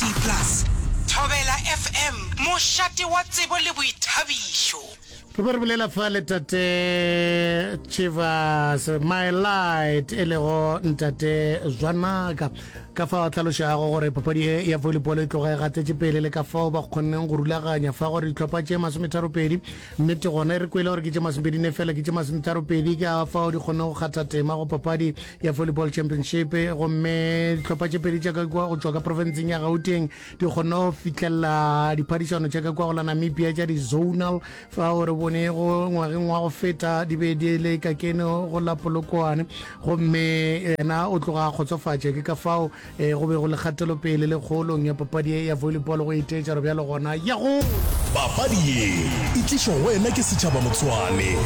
DAB+, Thobela FM, mošate wa tsebo le boithabišo. Re be re bolela fa le Tate Chivas My Light e lego Ntate Zwanaka ka fa o tlhalošago gore papadi e ya volleyball e tloga e gatetše pele le ka fao ba kgonneng go rulaganya fa gore ditlhopha tše masometharopedi nnete gona e re kwele gore ke tše masomepedi ne fela ke tše masometharopedi ka fao di kgonne go kgatha tema go papadi ya volleyball championship gomme dihlopha tše pedi tša ka kwa go tšwa ka profenseng ya gauteng di kgone go fitlhelela diphadišano tša ka kwa go la namibia tša di-zonal fa o re bone go ngwageng wa go feta di be di le ka kene go la polokwane gomme yena o tloga a kgotsofatše ke ka fao e go be go le kgatelopele le kgoolong ya papadi ye ya volleyball go iteetša re bjalo gona ya gola Papadi ye e tlišwa go wena ke Setšhaba Motswane.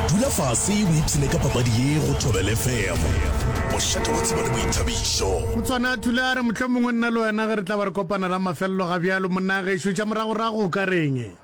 Dula fase o ipshine ka papadi ye go Thobela FM. Bošate bo tseba le boithabišo. Motswana Thulare, mohlomongwe nna le wena ge re tla ba re kopana la mafelelo ga bjalo, monnagešo, tša moragorago o ka reng?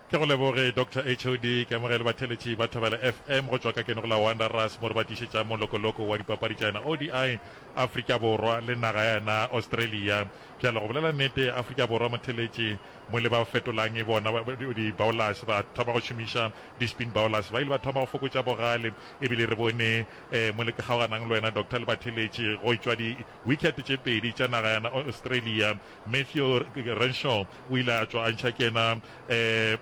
Ke go leboge Doctor HOD, ke amogele batheletši ba Thobela FM go tšwa ka ke Nogola Wanderers mo re ba tlišetšang molokoloko wa dipapadi tša yona ODI Afrika Borwa le naga ya yona Australia. Bjale go bolela nnete Afrika Borwa motheletši mo le ba fetolang bona di bowlers ba thoma go šomiša di spin bowlers ba ile ba thoma go fokotša bogale ebile re bone eh, mo le kgaoganang le wena Doctor le batheletši go tšwa di wicket tše pedi tša naga ya yona Australia Matthew Renshaw o ile a tšwa a ntšha ke yena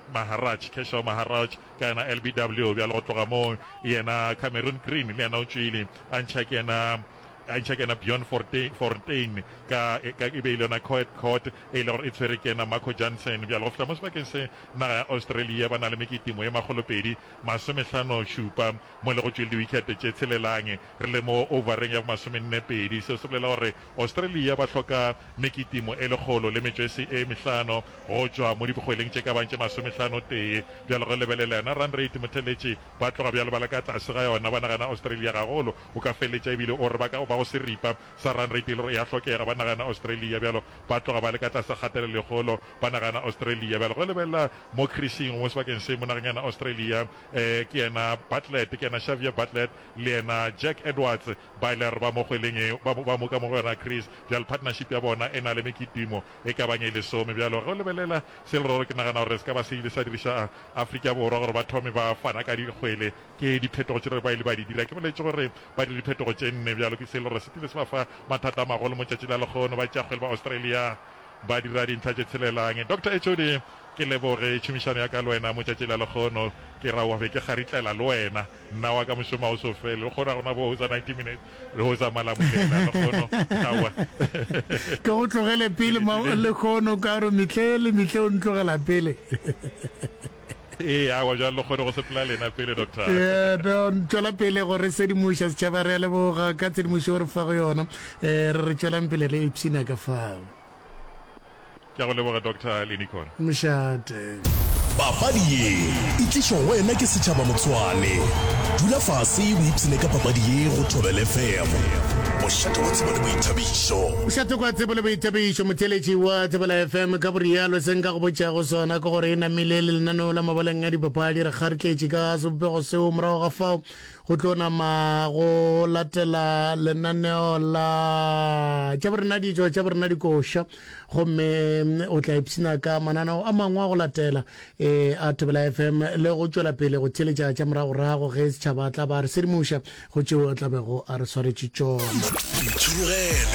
Maharaj, Keshaw Maharaj, ka yena LBW, bjalo go tloga moo yena Cameron Green le yena o tšwile a ntšha ke yena a ntšha ke yena Bjorn Fontein ka e be e le yona Coed Court e ile gore e tshwere ke yena Marco Jansen bjalo go fihla mo sebakeng se naga ya Australia ba na le meketimo ye makgolopedi masomehlano šupa mo le go tšwile diwikete tše tshelelang re le mo overeng ya bomasomenne pedi seo se bolela gore Australia ba hloka mekitimo e lekgolo le metšwesi e mehlano go tšwa mo dibgweleng tše ka bang tše masomehlano-tee. Bjalo go lebelela yona run rate, motheletši ba tloga bjalo ba le ka tlase ga yona. Ba nagana Australia gagolo. O ka feletša ebile o re ba ka go ba go seripa sa run rate e le gore e a hlokega. Ba nagana Australia bjalo ba tloga ba le ka tlase kgatelelo e kgolo. Ba nagana Australia bjalo go lebelela mo khrishing mo sebakeng se mo nageng yana Australia. Ke yena Bartlett, ke yena Xavier Bartlett le yena Jack Edwards. Ba ile re ba mo kgweleng e, ba, ba moka mo go yona Chris. Bjale partnership ya bona e na le mekitimo e ka bang e lesome. Bjale ge o lebelela se leroro, ke nagana gore se ka ba se ile sa diriša a, Afrika Borwa gore ba thome ba fana ka dikgwele. Ke diphetogo tše re ba ile ba di dira. Ke boletše gore ba dire diphetogo tše nne. Bjalo ke se leroro se kile se ba fa mathata a magolo mo tšatši la lekgono. Ba tšea kgwele ba Australia ba dira dintlha tše tshelelang. Doctor HOD, ke leboge tšhomišano ya ka le wena mo tšatši la lekgono. Ke ra o be ke kgaritlela le wena. Mna waka mošomo ga o so fele, go kgona gona bo hotsa 90 minutes, re hotsa malamulela, lekgono, aowa. Ke go tlogele pele, lekgono, ka gore mihle le mihle o ntlogela pele. Ee, aowa, bjale lekgono go sepela lena pele, doctor. Don, tšwela pele go re sedimoša setšhaba, re a leboga ka tshedimošo o re fa go yona. Re re tšwelang pele re ipshina ka fao. Ke a go leboga Doctor Linicon. Mšate. Papadi ye e tlišwa go wena ke Setšhaba Motswane. Dula fase o ipshine ka papadi ye go Thobela FM. Mošate wa tsebo le boithabišo. Mošate kwa tsebo le boithabišo. Motheeletši wa Thobela FM ka borialo. Se nka go botšago sona ke gore e namile le lenaneo la mabaleng a dipapadi. Re kgartletše ka sebopego seo. Morago ga fao Go tlo nama go latela lenaneo la tša borena dijo tša borena dikoša gomme o tla ipshina ka mananeo a mangwe a go latela um a thobela fm le go tšwela pele go theletša tša moragorago ge setšhaba tla ba re sedimuša go tšeo a tlabego a re swaretše tšona